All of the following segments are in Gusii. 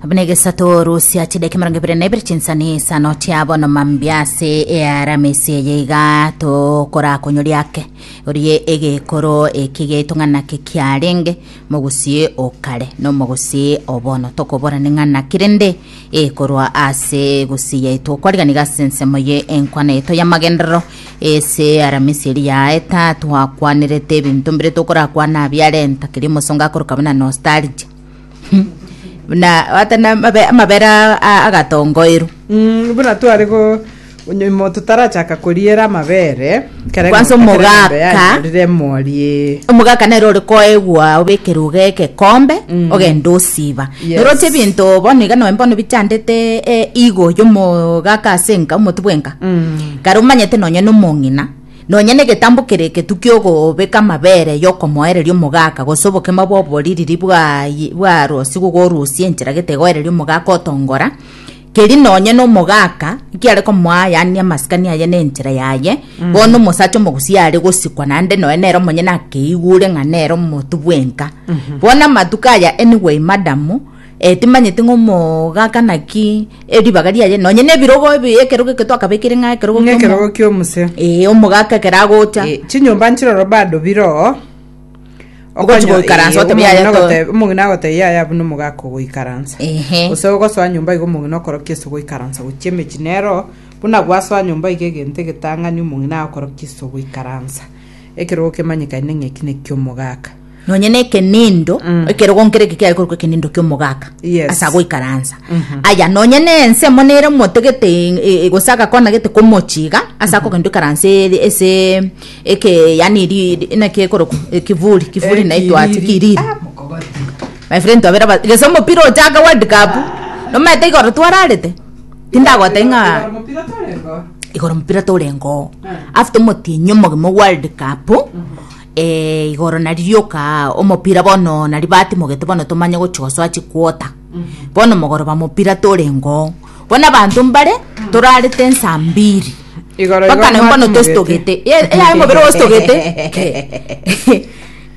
buna egesato rusia chidaki mirongo ibere na ibere chinsani isano chiabo nomambia ase earamisi eye iga tokorakonyoria ake orie egekoro eki getong'ana ki kiarenge mogusie okare nomogusie obono tokoborani ng'ana kirende e korwa ase egusi yaito okwarigani gase ensemo ye enkwana yaito y'amagenderero ase aramisi eri yaeta twakwanerete ebinto mbire tokorakwana abiarenta keria omosongo akoroka buna nostalgia buna ata na amabe- amabera a- agatongoirwa Mm, buna tware go Onye omonto tarachaka koriera amabere, kera Kwanza eng'ombe kera eng'ombe omogaka. yanyorire emori ee. omogaka nere ore koegwa obekere uga egekombe ogende osiba Yes. nero oche ebinto bono iga noe bono bichandete eh, igo yomogaka ase enka omoti bwenka kare omanyete nonye na omong'ina nonye na egetambo kere egetu kiogobeka amabere yokomoereria omogaka gose obokima bwa oboririri bwa bwa rosi gogorusia enchera gete egoereria omogaka otongora Keri nonye nomogaaka nkiare komoa yaani amasikani aye na enchera yaye bono omosacha omogusia are gosikwa naende noe nere omonyene akeigure ng'a nere omotu bwenka bono amatuko aya anyway madam eh, timanyeti ng'a omogaaka naki eh, ribaga riaye nonye na ebirogo ebi ekerogo eke twakabekire ng'a ekerogo Ng'a kiomo- ekerogo ki'omoseo. Eh, omogaaka ekero agocha Eh, chinyomba nchiroro bado biroo Ogochi goikaransa otebe yaya to- Omong'ina omong'ina agotebia yaya buna omogaka ogoikaransa Ehe. gose ogosoa nyomba iga omong'ina okorokia ase ogoikaransa gochia emechie nero buna gwasoa nyomba iga egento egetang'ani omong'ina agokorokia ase ogoikaransa ekerogo kemanyekane ng'a eki nekio omogaka nonye na ekenindo Mm. ekerogo nkere eke kiaye korokwa ekenindo kia omogaka Yes. ase agoikaransa Mhm. aya nonye na ense mo nere motegete e- e- gose agakona gete komochiga ase akogenda oikaransa ere- ase Eke yani ri inaki ekorokwa ekivuli kivuli na itwati kiriri my friend twabera ba gese omopira ochaka world cup nomanyete igoro twararete tindagotebia ng'a igoro omopira torengoo after omotienyi omogima o world cup eh, igoro nari rioka omopira bono nari batimogete bono tomanye gochi gosoa chiquota bono mogoroba mopira torengoo bono abanto mbare torarete nsa mbiri Igoro igoro Bakane mbona mwatugete. otositogete Ye- eyaye omobere ositogete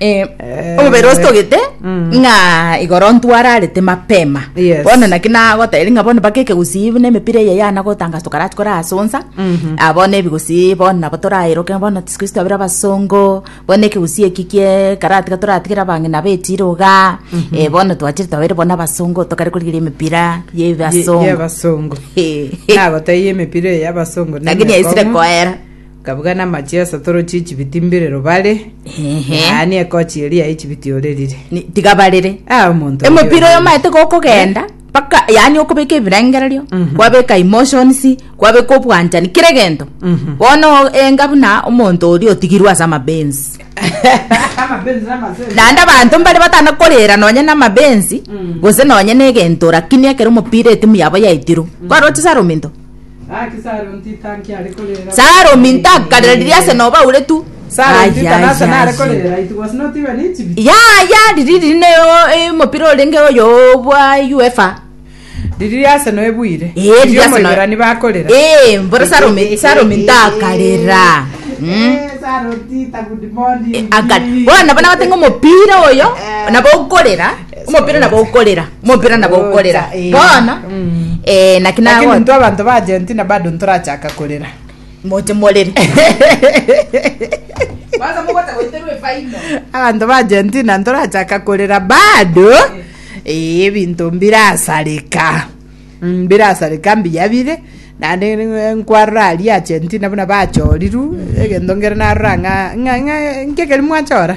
Eh, omobere ositogete ng'a igoro ntwararete mapema Yes. bono naki nagotebiri ng'a bono mpaka ekegusii buna emepira eye yana gotangasa tokarach korasonsa Ah, bono ebigusii bono nabo toraeroke bono siku isi twabire abasongo Bono ekegusii eki gekaratiga toratigere abang'ina betiire igaa, eh, bono twachire twabeire bono abasongo tokare korigereria emepira ya Ye- ebasongo. y'abasongo Eh, eh, nagotebia emepira eye y'abasongo Lakini yaisire nemekong'u. koera. kabuga namachia ase torochi echibiti mbirero bare Ehe. yaani ekochi eria ya echibiti orerire Ni- tiga barere. Ah, omonto oria emepira oyo orerire. maete gokogenda mpaka yaani okobeka ebirengererio kwabeka emotions kwabeka obwanchani kera egento bono enga buna omonto oria otigirwe ase amabensi naende abanto mbare batana korera nonye na amabensi gose nonye na egento lakini ekero omopira etimu yabo yaitirwe kwaroche saro ominto Salomi ntakarera riria ase nobauretu. Yaya riri riri ne omopira orenge oyo bwa UEFA. Riri ase no ebuire. Eh, riri ase no- Omoiborani bakorera. Eh, mbora Salomi Salomi ntakarera. Mm. Aka- bono nabo nabatenga omopira oyo nabo okorera Omopira nabo okorera, omopira nabo okorera. Ocha, eh. Bono, Mm. eh, naki lakini nago- nto abanto ba argentina bado ntorachaka korera moche morere. Kwanza mogota goiterwa efaino. abanto ba argentina ntorachaka korera bado ee ebinto mbirasareka Mm, mbirasareka mbiya bire nande n- nkwarora aria argentina buna bachoriru egento ngere narora ng'a ng'a- ng'a- nkegeri mwachora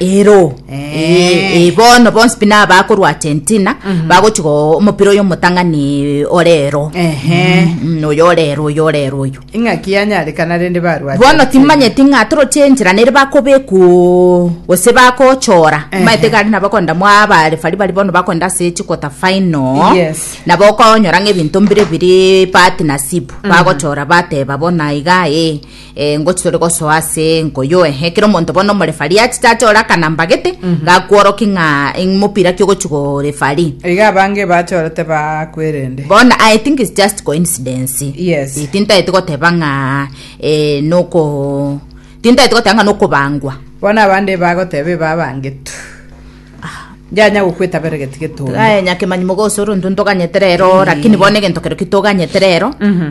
ero Eh. Eh, bono bonsi pi nabo bakorwa argentina bagochi go omopira oyo omotang'ani orero Ehe. Mm, oyo orero oyo orero oyo ing'aki yanyarekana rende barwate bono timanyeti ng'a toroche enchera nere bakobeku gose bakochora Ehe. maete gari nabo konda mwa abarefari bari bono bakonda ase chikota final Yes. nabo okonyora ng'a ebinto mbire biri bahati nasibu bagochora bateba bona iga ee engo chitori gosoa ase enko yoe ekero omonto bono omorefari achete ache ore akanambagete mhm. gakworoki ng'a omopira ki ogochi gorefari iga abange bachorete bakwerende bono i think is just coincidence yes itintaete goteba ng'a eh, noko tintaete goteba ng'a nokobangwa bono abande bagoteba ebabangetu Yanya gokweta bere geti getondo. Aye nyakemanyi mogose oronto ntoganyete rero lakini bono egento kero kitoganyete rero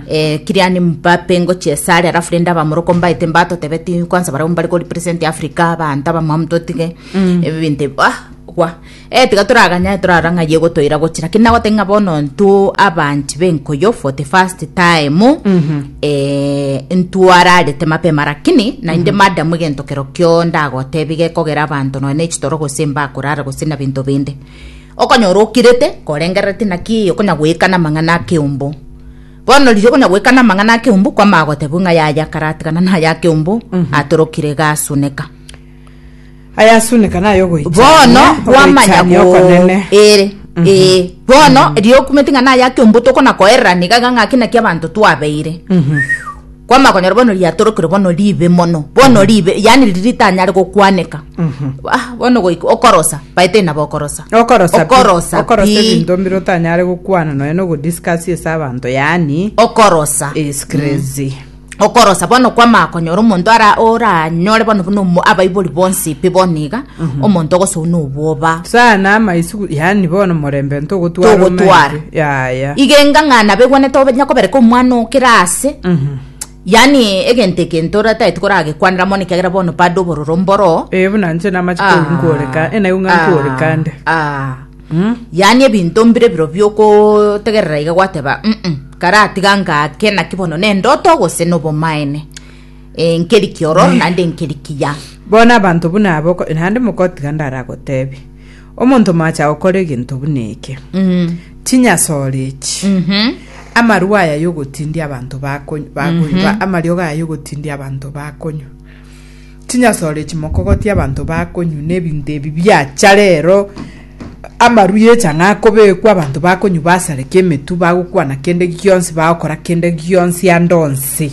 eh, kiriani mbape ngochia esare alafu rende abamoroko mbaete mbatotebeti kwanza barabwo mbare ko represent africa abanto abamwamu totige ebinto ebi ah gwa eh tiga toraganya torara ng'a ye gotoira gochia lakini nagoteba ng'a bono ntwe abanchi b'enkoyo for the first time Eh, ntwararete mapema rakini nainde mm -hmm. madam egento kero kio ndagotebi gekogera abanto noe ne chitoro gose mbakorara gose na binto binde okonyora okirete korengererete naki okonya goikana mang'ana akeumbu bono riria okonya goikana mang'ana akeumbu kwama agotebi ng'a yaya karatigana na ya akeumbu mm -hmm. atorokire gasuneka Ayasuneka nayogoichania Bono gwamanya ogoichania go okonene. ere ee bono erio okumete ng'a naye ake ombuto okona koererana iga iga ng'a ake naki abanto twabeire kwama konyora bono riatorokire bono ribe mono bono ribe yaani riria ritanyare gokwaneka ah bono goika okorosa by the way nabo okorosa Okorosa pi- okorosa okorosa pi. ebinto mbire otanyare gokwana nonya na ogodiscuss ase abanto yaani okorosa is crazy okorosa bono kwamanya konyora omonto ara oranyore bono buna omo- abaibori bonsi pi bono iga omonto ogosou na obwoba sana amaisu yani bono morembe ntogotwara togotwara omaisu. yaya iga engang'ana abegwenete onya kobereka omwana oo kera ase yaani egento egento oratagete koragekwanera mono ekiagera bono bado obororo mboroo ee buna nche namache Ah, korwa nkoreka enayo ng'a ah, nkorekande ah. Yaani ebinto mbire biro biokotegerera iga gwateba mm karatiga ngake naki bono nendoto gose nobomaene e, nkeri kiororo naende nkeri kiya Bono abanto buna aba oko- naende mokotiga ndaragotebi omonto moacha gokora egento buna eke mm. chinyasore echi Mhm. amarua aya yogotindia abanto bakony- bakoy- ba- amariogo aya yogotindia abanto bakonywa Chinyasore echi mokogotia abanto bakonywa na ebinto ebi biacha rero, amaru y'echa ng'a akobekwa, abanto bakonywa basareke emetwe, bagokwana kende gionsi, bagokora kende gionsi ande onsi.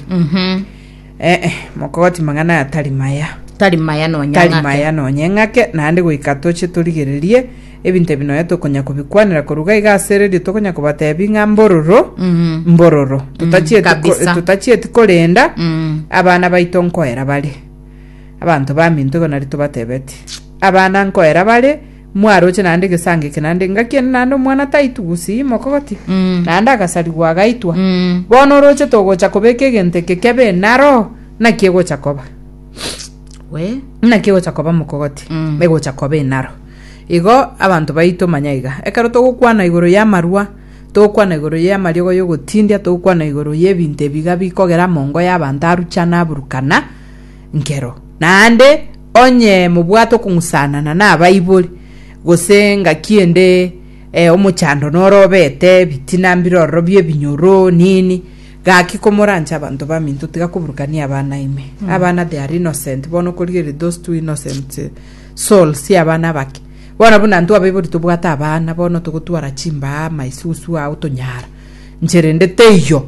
Eh, eh, mokogotia mang'ana aya tari maya, tari maya nonya tari ng'ake. maya nonye ng'ake, naende goika toche torigererie Ebinto ebi nonya tokonya kobikwanera koruga iga ase radio tokonya kobatebi ng'a mbororo Mm. mbororo Mm, totachieti ko- kabisa. totachieti korenda Mm. abana baito nkoera bare abanto baminto igo nari tobatebeti abana nkoera bare mwaroche naende egesango eke naende ngaki ende naende omwana taitugusi imokogoti Mm. naende agasarigwa agaitwa Mm. bono oroche togocha kobeka egento eke kebe naro naki egocha koba we naki egocha koba mokogoti Mm. egocha koba enaro Igo abanto baito manya iga, ekero togokwana igoro y'amarua, togokwana igoro y'amariogo y'ogotindia, togokwana igoro y'ebinto ebiga bikogera amongo y'abanto arucha na aburukana, nkero. Naende onye mobwate okong'usanana nabaibori, gose engaki ende eh, omochando noro obete, ebitina mbirororo bi'ebinyoro, nini, gaki komoranche abanto baminto, tiga koburukania abana ime. Abana they are innocent, bono okorigereria those two innocent Sol sia abana abake. Bono buna ntwabaibori tobwate abana bono togotwara chimbaa maisusu aa otonyara nche rende teiyo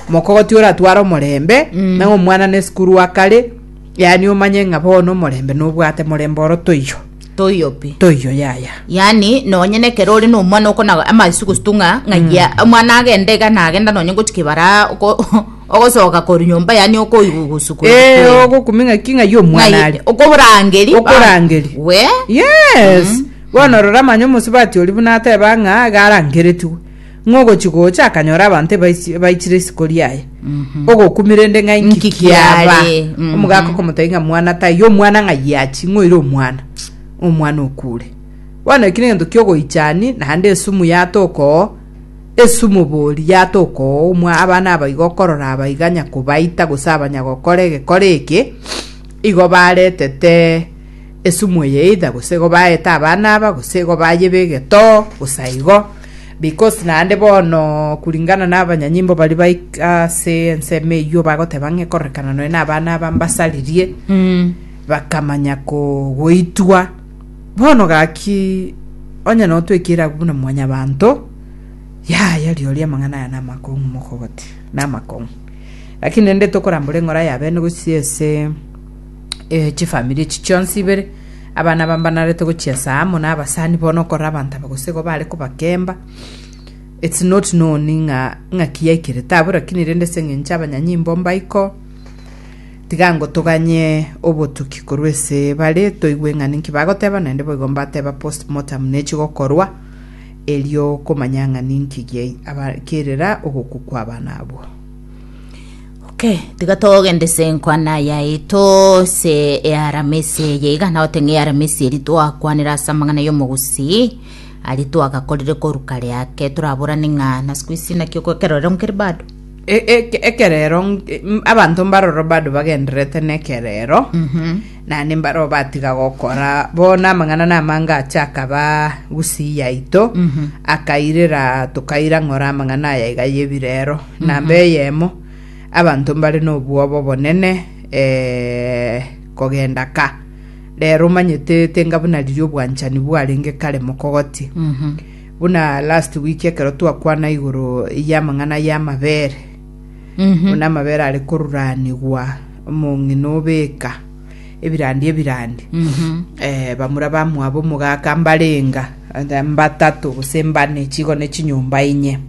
mokogoti oratware omorembe mm. na omwana ne sukuru akare yani omanye ng'a bono omorembe nobwate morembe oro toiyo toiyo pi toiyo yaya yani nonye nekero ore nomwana okona amaisugusu tung'a ng'ayia mm. omwana agende iga nagenda nonye ngochikibara Ogosoka korwa nyomba yaane okoigwa ogosukwa Ee, ebikwee. ogokumia ng'aki ng'ai omwana Ng'ai- are. okoborangeri Okorangeri. ba- we Yes. Bono rora manya omosubati oria buna ateba ng'a garangeretigwe. Ng'ogochi gocha akanyora abanto ebaisi- ebaichire isiko riaye. Ogokumia rende ng'ai Nki nki kiaba. kiare? Mhm. Omogaka okomotebia ng'a mwana taiyo omwana ng'ai achi ng'oire omwana. Omwana okure. Bono eki negento kiogoichani naende esumu yatoka oo. Esumobori yata okoumwa abana aba igo okorora abaiganya kobaita gose abanyagokora egekore eke, igo baretete esumu eye either gose igo baeta abana aba gose igo bayeba egetoo gose aigo because naende bono kuringana na abanyanyimbo bari baik- ase ensemo eywo bagoteba ng'a ekororekana nonya na abana aba mbasaririe bakamanya ko goitwa. Bono gaki, onye notwekire agwo buna mwanyabanto, yaya rirorio amang'ana aya namakong'u mokogoti, namakong'u. Lakini rende tokorambora eng'ora y'abene gochia ase eh, chifamiri echi chionsi ibere, abana aba mbanarete gochiesa amo na abasani bono okorora abanto aba gose igo bare kobakemba, it's not known ng'a ng'aki yaikerete abwo, lakini rende ase eng'encho abanyanyimbo mbaiko, Tiga ngotoganye obotuki korwa ase bare, toigwe ng'a ninki bagoteba, naende boigo mbateba post mortem nechi gokorwa, erio komanya ng'a ninki giai aba kerera ogokwa kwa abana abwo. Okay, tiga togende ase enkwana yaito ase earamisi eye iga nao teng'e earamisi eri twakwanera ase amang'ana y'omogusii aria twagakorire korwa kare ake toraborane ng'a na siku isi naki okoekerorero nkere bado Ekerero abanto mbaroro bado bagendererete nekerero naende mbaro batiga gokora bono amang'ana na amange ache akaba gusii yaito akairera tokaira ng'ora amang'ana aya iga yebirero namba eyemo abanto mbare nobwoba obonene eh, kogenda ka rero omanyete tenga buna riria obwanchani bwarenge kare mokogotie Buna last week ekero twakwana igoro y'amang'ana y'amabere, buna amabere are koruranigwa omong'ina obeka ebirandi ebirandi eh, bamura bamwabo omogaka mbarenga eh, mbatato gose mbane chigo ne chinyomba inye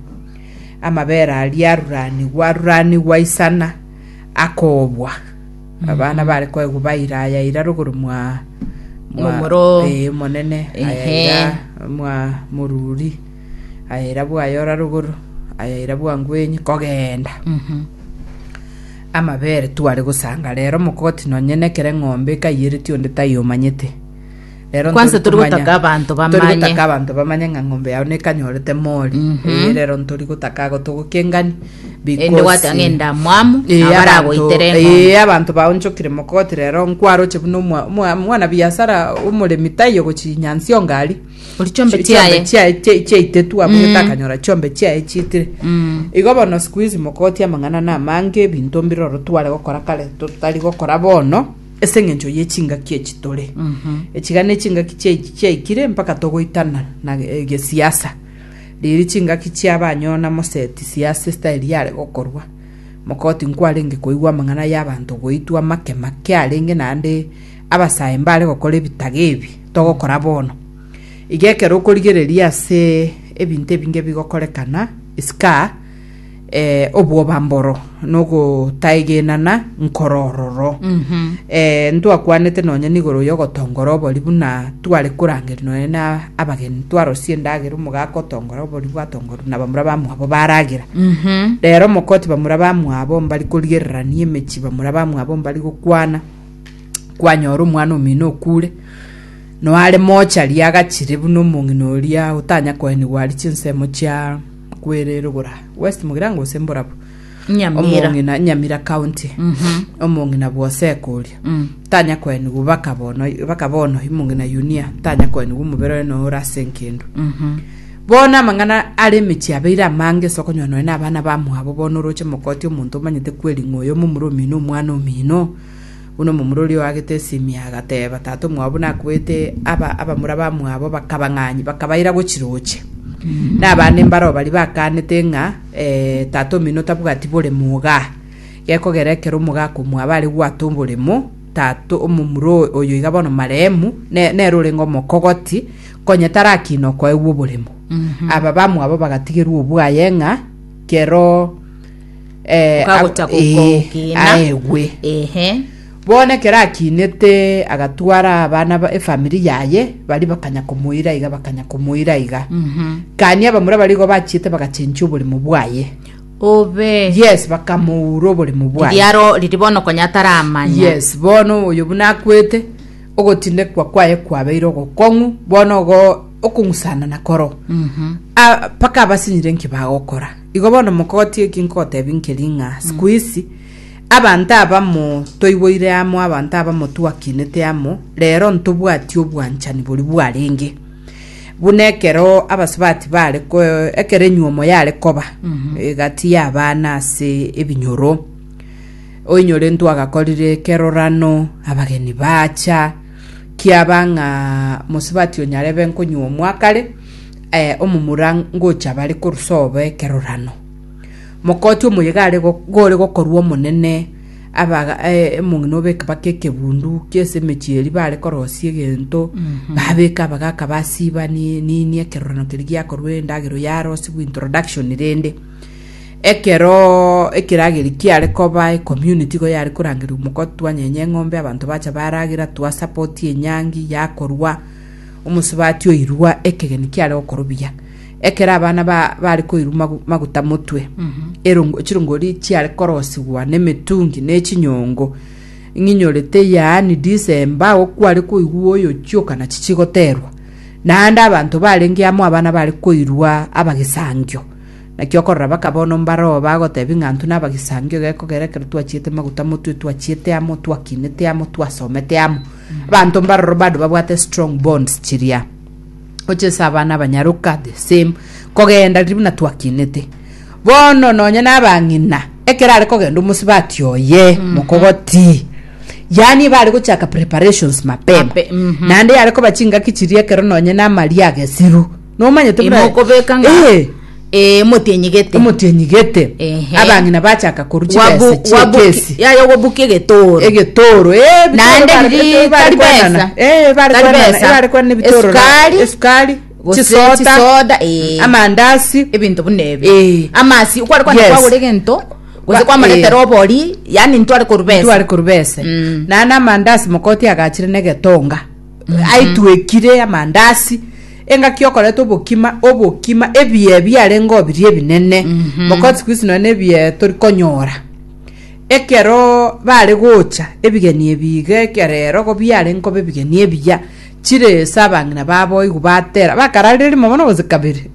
amabere aria aruranigwa aruranigwa isana akobwa Abana bare koegwa baira aya ira rogoro mwa mwa Momoro. ee monene aya Ehe. ira mwa moruri aya ira bwayora rogoro aya ira bwangwenyi kogenda Mhm. amabere tware gosanga rero mokoti nonye nekere ng'ombe ekaiyereti onde tayomanyete Rero Kwanse ntori tori komanya- gotaka abanto tori bamanye. gotaka abanto bamanye ng'a ng'ombe yao nekanyorete mori Mhm. Eh, rero ntori gotaka ago togokengani Ende gwate ang'e endamwamu, Eh, abanto- abaragoitere eng'ombe. eh, abanto baonchokire mokoti rero nkwaroche buna omwa- omwa- mwana biasara omoremi taiyo gochinyansi ongari Ori chombe chiaye. chiaitetu abugete akanyora chombe chiaye chiitire Mm. igo bono siku hizi mokoti amang'ana na amange ebinto mbiroro tware gokora kare totari gokora bono Ase engencho ye chingaki echi tore, echiga ne chingaki chia echi chiaikire mpaka togoitana na eh, gesiasa. Riiri chingaki chia abanyona moseti siasa esitari yare gokorwa. Mokoti nkwarenge koigwa amang'ana y'abanto goitwa amake make arenge naende abasae mbare gokora ebitaga ebi togokora bono. Iga ekero okorigereria ase ebinto ebinge bigokorekana, isika obwobamboro na ogotaegenana nkoro ororo. Eh, ntwakwanete nonye nigoro y'ogotongora obori buna tware korangeria nonye na abageni twarosie endagera omogaka otongora obori bwatongoru na bamura bamwabo baragera rero mokoti bamura bamwabo mbari korigererania emechi bamura bamwabo mbari gokwana kwanyora omwana omino okure noare mochari agachire buna omong'ina oria otanya koenigwa ari chinsemo chia Kwererobora, West Mugirango gose Mborabu. Nyamira. Omong'ina Nyamira County. Omong'ina bwoseka oria. Tanya koenigwa baka bono baka bono imong'ina Yunia tanya koenigwa omobere oye no orase nkendo. Bono amang'ana are emechie abeire amange ase okonywa nonya na abana bamwabo bono oroche mokoti omonto omanyete kweringa oyo momura omino omwana omino. Buna omomura oria oagete esimia agateeba, Tata omwabo nakwete aba abamura bamwabo bakabang'anya, bakabaira gochiroche. Nabande mbaroo baria bakaanete ng'a eh, tata omino tabwati boremo ogaa. Gekogera ekero omogaa akomwaba are gwata oboremo, tata omomura oyo- oyo iga bono marehemu, ne- nere orenge omokogoti, konya tarakina okoegwa oboremo. Aba bamwabo bagatigerwa obwaye ng'a kero eh, Okagocha ab- eh, gokogina. aegwe Ehe. bono ekero akinete agatwara abana ba- efamiri yaye bari bakanya komoira iga bakanya komoira iga Mhm. kani abamura barigo bachiete bagachenchia oboremo bwaye Obe. yes bakamoura oboremo bwaye Riaro riri bono konya ataramanya. yes bono oyo buna akwete ogotindekwa kwaye kwabeire ogokong'u bono ogo okong'usana na koro Mhm. Ah, mpaka abasinyire nki bagokora Igo bono mokogotia eki nkogotebi nkeri ng'a sikuisi abanto abamo toiboire amo, abanto abamo twakinete amo, rero ntobwati obwanchani boria bwarenge. Buna ekero abasubati bare ko ekero enyuomo yare koba egati y'abana ase ebinyoro, oinyorentwe agakorire ekerorano, abageni bacha, kiaba ng'a mosubati oyo nyarebe nkonyuomwa kare, omomura ngocha bare korusobo ekerorano. Mokoti omoyega are gore gokorua omonene abaga omong'ina obeke baka ekebundu kiase emechie eri bare korosia egento babeka abagaka basiba ni nini ekerorano keri giakorwa endagera yarosibwa introduction rende ekero ekerageri kiare koba ecommunity igo yare korangererwa mokoti twanyenye eng'ombe abanto bacha baragera twa support enyangi yakorwa. Omosubati oirua ekegeni kiare okorubia, ekero abana ba, bare koirwa magu- maguta motwe, erongo, chirongori chiare korosigwa nemetungi ne chinyongo, ing'inyorete yaani December agwo kware koigwa oyochioka nachi chigoterwa. Naende abanto barenge amo abana bare koirwa abagisangio. Naki okorora baka bono mbaroo bagotebia ng'a intwe nabagisangio egekogera ekero twachiete maguta motwe, twachiete amo, twakinete amo, twasomete amo. Abanto mbaroro bado babwate strong bonds chiria. Gochesa abana abanyaroka the same. Kogenda riria buna twakinete. Bono nonya na abang'ina ekero are kogenda omosibati oye mm-hmm. mokogoti. Yani bare gochaka preparations mapema. Mape, mm-hmm. Nande yare koba chingaki chiria ekero nonya na amaria agesiru. Nomanyete buna- Imokobeka ng'a Eh, ee motienyi gete. omotienyi gete Ehe. abang'ina bachaka korwa Wabu- chibesa chie wabu- kesi yaya ogobuka egetoro egetoro eh, ebitoro Naende bare- riri ebitoro bare tari kwenana. besa. Eh, bare Tari kwenana, besa. bare kwenana ebitoro ra- Esukari. esukari Gose chisoda chisoda, eh. amandasi ebinto buna ebi Eh. amasi kware kwana Yes. kwagora egento gose Ba- kwamaretera eh. obori yani ntware korubesa tware korubese Mm. naye namandasi mokoti agachire negetonga aitwekire amandasi engaki okoreta obokima obokima ebiye biarenge obirie ebinene mokoti siku hizi nonye ebiye tori konyora ekero bare gocha ebigeni ebige ekero ero igo biarenge koba ebigeni ebiya chire ase abang'ina babo igo batera bakararire rimo bono gose kabere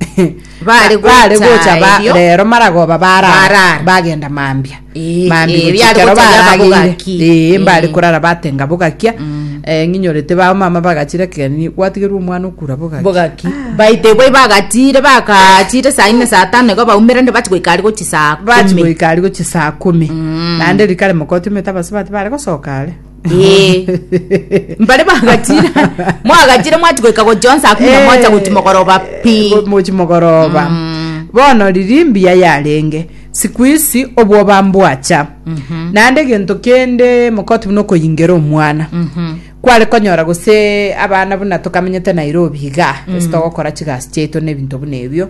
Bare Ba- bare gocha gocha ba- erio. rero maragoba barara Barara. bagenda mambia Eh, mambia eh, gocha biare ekero gocha biaba barageire. bogaki. Eh, mbare Eh. korara batenga bogakia Eh, ng'inyorete bao mama bagachira kegeni gwatigerwa omwana okura bogaki bogaki baite boi bagatire bakachire saa ine saa tano igo baumire nde bachi goikari gochi saa bachi kumi. goikari gochi saa kumi naende rikare mokoti omete abasubati bare gosoka are Eh. mbare bagatira mwagatire mwatigoika gochionsa akuna Eh, mwacha gochi mogoroba pi eh, mochi mogoroba bono riri mbuya yarenge siku isi obwoba mbwacha naende egento kende mokoti buna okoyingera omwana kware konyora gose abana buna tokamenyete nairobi iga ase togokora chigasi chiaito na ebinto buna ebio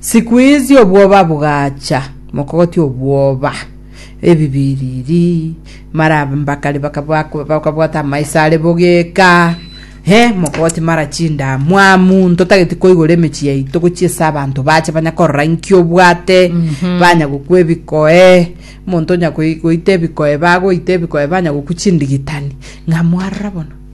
Siku izi obwoba bogacha, mokogotia obwoba, ebibiriri, marabe mbakari bakabwa- bakabwata amaiso are bogeka, he, mokogotia mara chindamwamu, ntotageti koigora emechie yaito gochia ase abanto bache banya korora inki obwate, banya gokwa ebikoe, omonto onya goi- goita ebikoe bagoita ebikoe banya gokwa chindigitani, ng'a mwarora bono.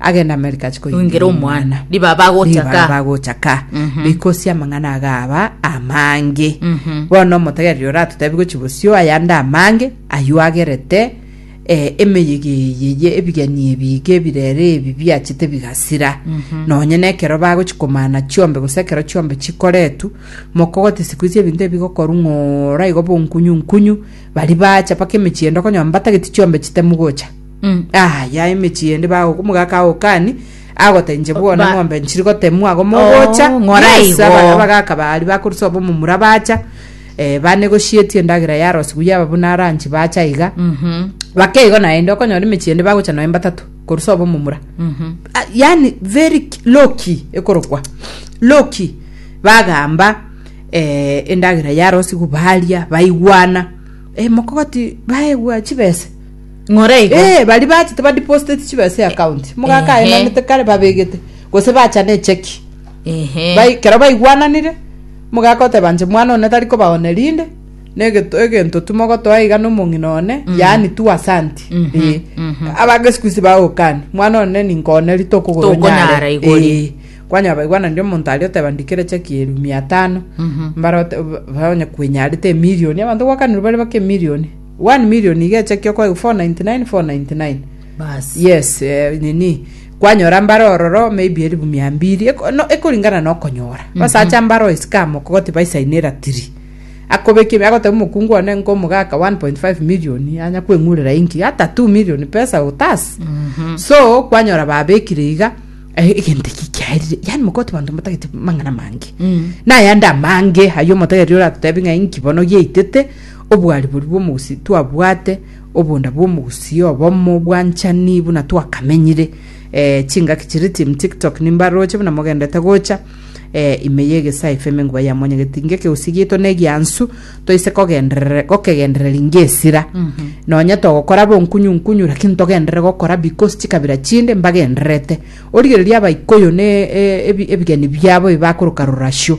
agenda Amerika achi koyengera Koyengera omwana. omwana Riba bagocha Riba ka. bagocha ka Mhm. rikosia amang'ana agaba amange Mhm. bono omotegereri oratotebi gochi bosio ayande amange aywo agerete eh, emeyega eye ye ebigeni ebi iga ebirere ebi biachete bigasira Mhm. nonye na ekero bagochi komana chiombe gose ekero chiombe chikoretu mokogote siku izi ebinto ebi bigokoru ng'ora igo bonkunyu nkunyu bari bacha mpaka emechie ende okonywa mbatageti chiombe chitemu gocha Mm, ah, ya emechie ende bago omogaka agokani agotenche bwona Ba- ng'ombe nchiri gotemwa ago mogocha Oh, ng'ora Yes, igo. abana bagaka bari bakorusa obo momura bacha eh, banegoshieti endagera ya rosi buya aba buna ranchi bacha iga Mhm, bakeigo naende okonyora emechie ende bagocha noe mbatatu korusa obo momura mhm. Ah, yani very ki- low key ekorokwa low key bagamba eh, endagera ya rosi igo baria baigwana eh, mokogoti baegwa chibese ng'ora igo Eh, bari bachete ba deposited chibe ase account mogaka Ehe. aenanete kare babegete gose bachana echeki Ehe. Bai- kero baigwananire mogaka oteba nche mwana one tari kobaone rinde negeto egento tu mogotoa iga nomong'ina one yaani tu asanti Eh. abange siku isi bagokani mwana one ninkoone ri Tokonyara tokogonyara igo ri. kwanya baigwananire omonto aria oteba ndikere cheki eri mia tano mbara ote- ba- onye kwenyarete emilioni abanto gwakanirwe bare bake emilioni One million nigo echakio kwa 499 499 yes eh, nini kwanyora mbare ororo maybe elifu mia mbili Eko- no, ekolingana na okonyora basacha mbare oisikama okogoti baisainera tiri akobekie agotabu mokungu one nko omogaka 1.5 million anya kweng'urera inki hata 2 million pesa utas so kwanyora babekire iga eh, egento eki kiaerire yani mokoti banto motagete mang'ana mange nayande amange ayo omotegeria oratotebi ng'a inki bono giaitete Obwariboru bw'omogusii twabwate, obonda bw'omogusii obomo, obwanchani buna twakamenyire. Eh, chingaki chiri team TikTok nimbaroche buna mogendete gocha eh, ime y'egesae FM engwa ya Mwanya Getingi ekegusii gieto negiansu toise kogenderere gokegendereri ngesira. Nonya togokora bonkunyu nkunyu lakini togenderere gokora because chikabira chinde mbagendererete. Origereria abaikuyu ne eh, ebi- ebigeni biabo ebi bakoroka rorasio.